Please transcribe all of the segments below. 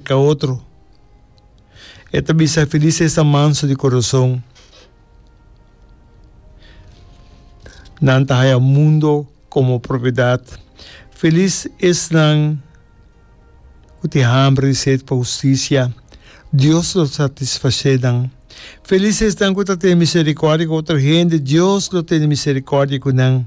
Ca otro. E ta bisa, Feliz e esnan manso di corazon, nan ta haya mundo como propiedad. Feliz esnan cu tin hambre i sed pa husticia, Dios lo satisface nan. Feliz esnan cu ta tene misericordia cu otro hende, Dios lo tene misericordia cu nan.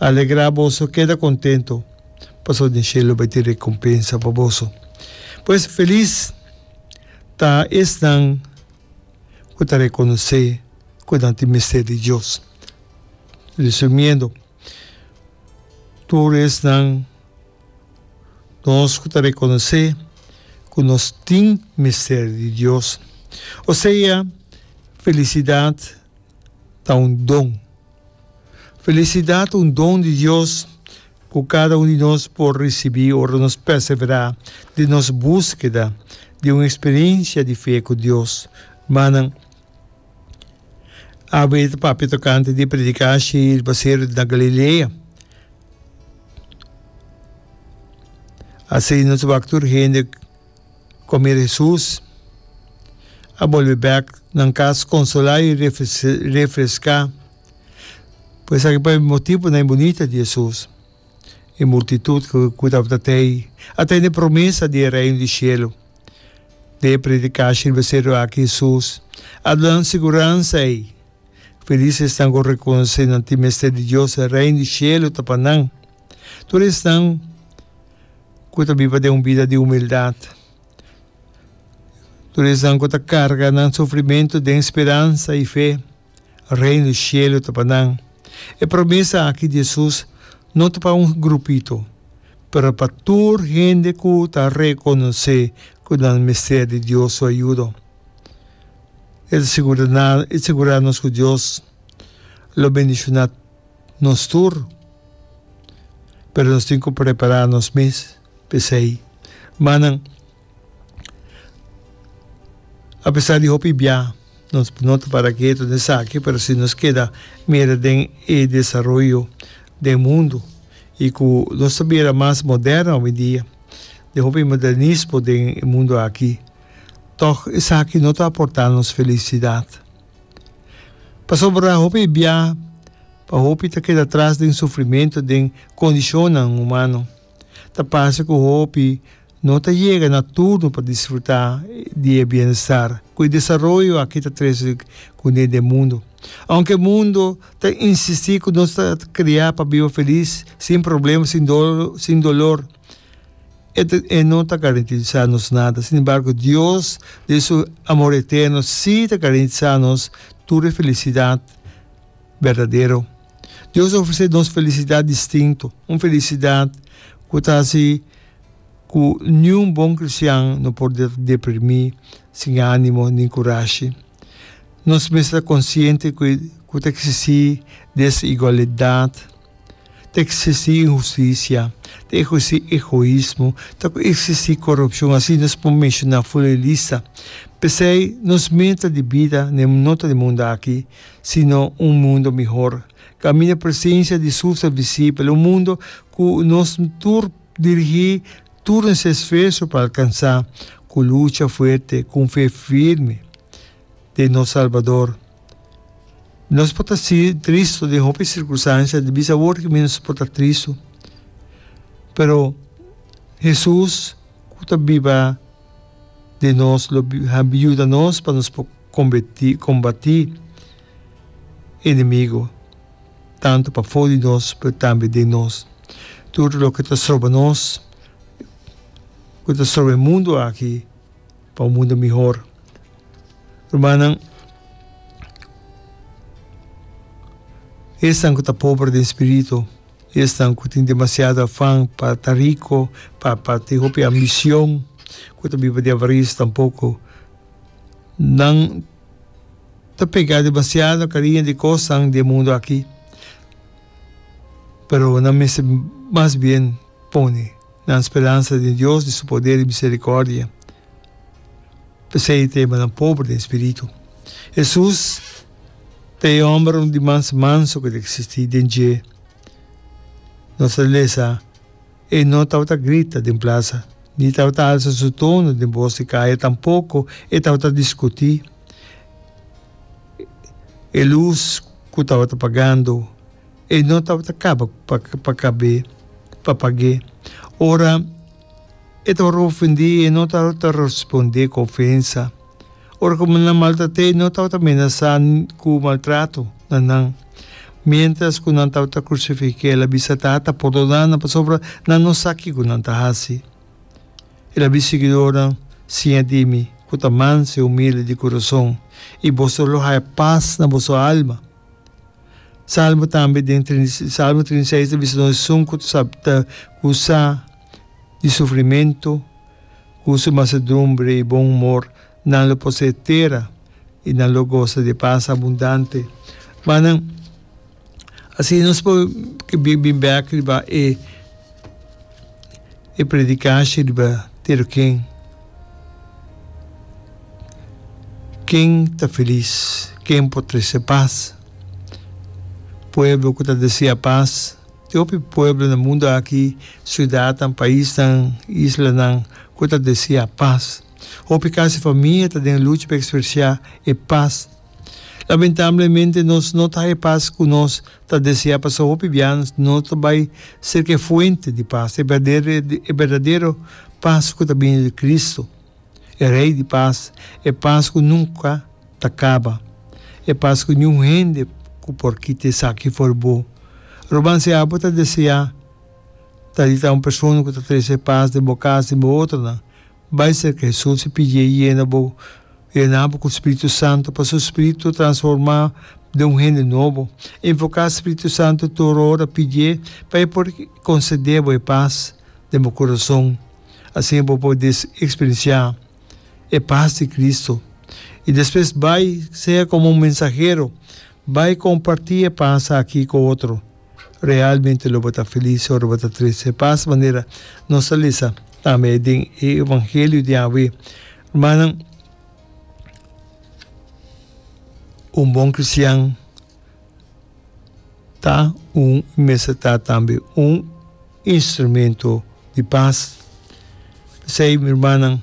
Alegra boso, keda kontentu, pasobra den shelu bai tin rekompensa pa boso. Pues, felis ta esnan ku ta rekonosé ku nan tin mester di Dios. Resumiendo, tur esnan, nos ku ta rekonosé ku nos tin mester di Dios, o sea, felisidat, ta un don. Felisidat un don di Dios ku kada un di nos por risibí ora nos perseverá den nos búskeda di un eksperensia di fe ku Dios. Manan, a bay ta papia tokante di e prediká shi riba seru na Galilea. Asina nos wak tur hende. Comida di Hesus a bolbe bek nan cas consola y refresca. Por esaki pa e motibonan bunita di Hesus e multitud cu tabata tey a tene promesa di e Reino di Cielo. Den e predicashi di baseru aki Hesus a duna nan siguransa ey. Felis esnan ku a rekonosé nan tin mester di Dios, e Reino di Shelu ta pa nan. Tur esnan ku ta biba den un bida di humildat, tur esnan ku ta karga nan sufrimentu den speransa i fe, Reino di Shelu ta pa nan. E promesa aki di Hesus no ta pa un grupito, pero pa tur hende ku ta rekonosé ku nan mester di Dios su ayudo. E ta sigurá nos ku Dios lo bendishoná nos tur, pero nos tin ku prepará nos mes pa esei. Manan, apesar di hopi bia nos no ta para ketu den esaki, pero si nos keda mira den e desaroyo den mundu i ku nos ta bira mas moderno ovindia, den hopi modernismo den e mundu aki, tòg esaki no ta a portá nos felisidat. Pasobra hopi bia, pa hopi ta keda tras den sufrimentu den kondishonnan humano, ta parse ku hopi no ta yega na turno pa disfrutá di e bienestar ku e desaroyo aki ta trese kuné den mundu. Ounke e mundu ta insistí ku nos ta kreá pa biba felis, sin problema, sin dolo, sin dolor, E ta e no ta garantiza nos nada, sin embargo Dios den su amor eterno si ta garantiza nos tur e felicidad berdadero. Dios ta ofrece nos felicidad distinto, un felicidad cu ta haci cu niun bon cristian no por deprimi, sin animo nin curashi. Nos mes ta consciente cu ta existi desigualdad. Ta eksistí inhustisia, ta eksistí egoismo, ta ku eksistí korupshon, asina nos por menshoná fora e lista. P'esei nos meta di bida n'e no ta di mundu aki, sino un mundu mihor, kaminda presensia di Sul ser visibel, un mundu ku nos tur dirigí tur nos esfuerso pa alkansá, ku lucha fuerte, ku un fe firme. di nos Salbador. Nos por ta si tristu den hopi sirkunstansia, di bisa awor ki nos por ta tristu, pero Hesus ku ta biba den nos lo yuda nos pa nos por kombeti kombatí enemigu tantu pafó di nos pero tambe den nos. Tur loke ta stroba nos, ku ta stroba e mundu aki, Pa un mundo mihor. Rumannan, esnan ku ta pober den spiritu, esnan ku tin demasiado afan pa ta riko, pa pa tin hopi ambision ku ta biba di avaris tampoko, nan ta pega demasiado kariño di kosnan den e mundu aki, pero nan mester mas bien. pone nan speransa den Dios, di Su poder i misericordia. P'esei e temanan pober den spiritu. Hesus ta e homber di mas manso ku ta eksistí den dje. Nos ta lesa, E no tabata grita den plasa, ni tabata alsa su tono den bos di kaya, tampoko e tabata diskutí. E lus ku tabata pagando. E no tabata caba pa cab'é pa pag'é. Ora e tabata ofendé e no tabata respondé cu ofensa. Ora cu nan maltrat'é e no tabata menasá cu maltrato na nan. Mientras cu nan tabata crucific'é el a bisa, Tata, perdona nan pasobra nan no sa kico nan ta haci. El a bisa e siguidornan, Siña di mi cu ta manso i humilde di curason, i boso lo haya pas na boso alma. Salmo tambe den Salmo trinta i seis ta bisa nos esun ku ta ta kusa di sufrimentu ku su masedumbre i bon humor nan lo posee tera i nan lo gosa di e pas abundante. Manan, asina nos por bin bek riba e. e predikashi riba Tero Ken, Ken ta felis? Ken por trese pas? Pueblo ku ta deseá pas, Te hopi pueblo na mundu aki, siudatnan, paisnan, islanan, ku ta deseá pas. Hopi kas i famia ta den lucha pa ekspresiá e pas. Lamentablemente nos no ta haña pas ku nos Ta desea pa sa hopi bianas nos ta bai serka e fuente di pas, e berdadero pas ku ta bini di Kristu, e Rei di pas, e pas ku nunka ta kaba, e pas ku niun hende ku por kita esaki for bo. Ruman, si abo ta deseá ta di ta un persona ku ta trese pas den bo kas, den bo otronan, Bai serka Hesus i pidié e yena bo. Yena bo ku Spiritu Santu pa su spiritu transformá bo den un hende nobo. Invoká Spiritu Santu tur ora, pidié pa e por konsedé bo e pas den bo kurason. Asina bo por eksperensiá e pas di Kristu. I despues bai, sea komo un mensahero, bai kompartí e pas aki ku otro. Realmente lo bo ta felis ora bo ta triste? Pas manera nos a lesa tambe den e evangelio di awe, rumannan, un bon kristian ta un i mester ta tambe un instrumento di pas. P'esei, mi rumannan,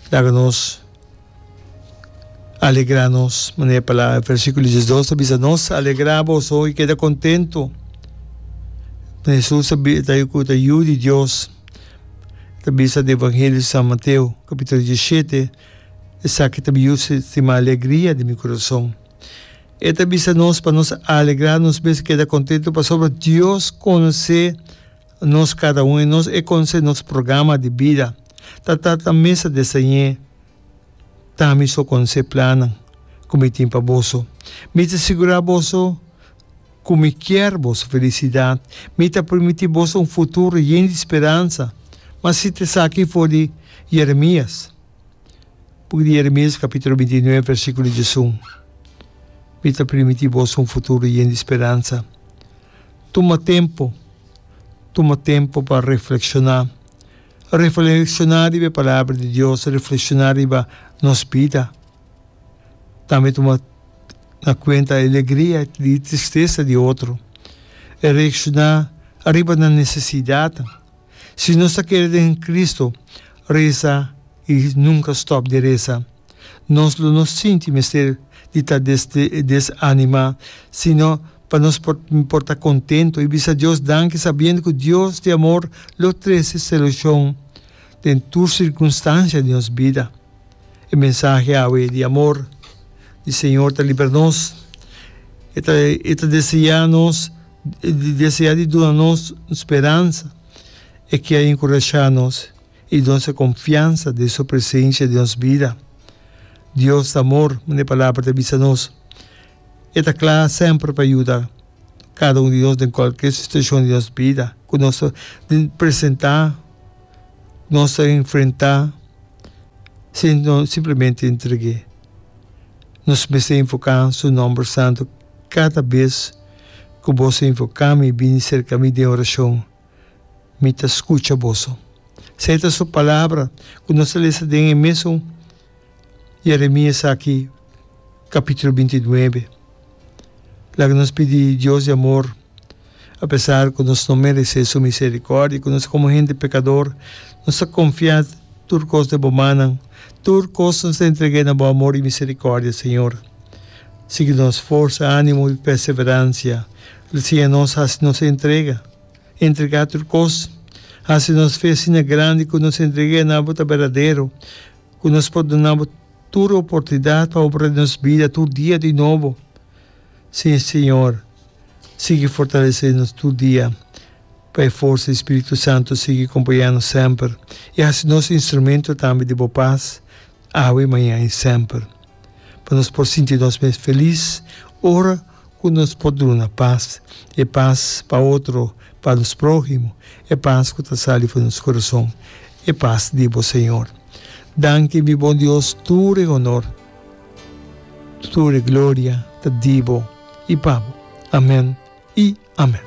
laga nos. Alegrá nos. Manera e palabra, versículo diesdos ta bisa nos, Alegrá boso i keda kontentu. Jesus ta bi, ta ku ta Yu di Dios. E ta bisa den Evangelio di San Mateo, kapítulo diesishete, Esaki ta mi Yu stima, alegria di mi kurason. E ta bisa nos pa nos alegrá nos mes i keda kontentu pasobra Dios konosé. Nos kada un e nos e conse nos programa di bida ta ta ta mesa desañe ta mi so conse plannan cu mi tin pa boso mi ta sigura boso cu mi kier boso felicidad mi ta primiti boso un futuro yen di speransa ma si ta esaki for di Jeremias book di Jeremias capitulo binti nuebe versiculo diesun mi ta primiti boso un futuro yen di speransa. Tuma tempu. Tuma tempu pa reflekshoná. Reflekshoná riba e Palabra di Dios, reflekshoná riba nos bida. Tambe tuma na kuenta e alegria i e tristesa di otro. Reakshoná riba nan nesesidatnan. Si nos ta kere den Cristo resa i nunka stòp di resa, nos lo no sinti mester di ta desánima, sino pa nos por ta kontentu i bisa Dios danki sabiendo ku Dios di amor lo trese solushon den tur sirkunstansia di nos bida. E mensahe awe di amor di Señor ta libra nos. E ta deseá nos. di desea di duna nos speransa, e ke a enkurashá nos i donse konfiansa den su presensia den nos bida. Dios ta amor, manera e Palabra ta bisa nos. E ta kla semper pa yuda kada un di nos den kualke situashon di nos bida ku nos ta presentá, ku nos ta enfrentá sin nos simplemente entreg'é. Nos mester enfoká Su nòmber santu kada bes. ku boso a invoká mi i bini serka mi den orashon, mi ta skucha boso. Esei ta Su Palabra ku nos a lesa den e mesun Yeremia esaki, kapítulo binti nuebe. Laga nos pidi Dios di amor, apesar ku nos no meresé Su miserikòrdia, ku nos komo hende pekador, nos ta konfiá tur kos den Bo mannan. Tur kos nos ta entreg'é na Bo amor i miserikòrdia, Señor. Sigui nos forsa, animo i perseveransia. Lo siña nos hasi nos entrega. Entregá tur kos. Hasi nos fe asina grandi ku nos entrega na bo ta berdadero, ku nos por duna bo tur oportunidat pa obra den nos bida tur dia di nobo. Sí, Señor, sigui fortalesé nos tur dia pa e forsa di spiritu santu sigui kompañá nos semper i hasi nos instrumento tambe di bo pas, awe, mañan i semper. pa nos por sinti nos mes felis ora ku nos por duna pas, e pas pa otro, pa nos próhimo, e pas ku ta sali fu nos kurason, e pas di bo Señor. Danki mi bon Dios, tur e honor, tur e gloria ta di bo i pa bo. Amén i amén.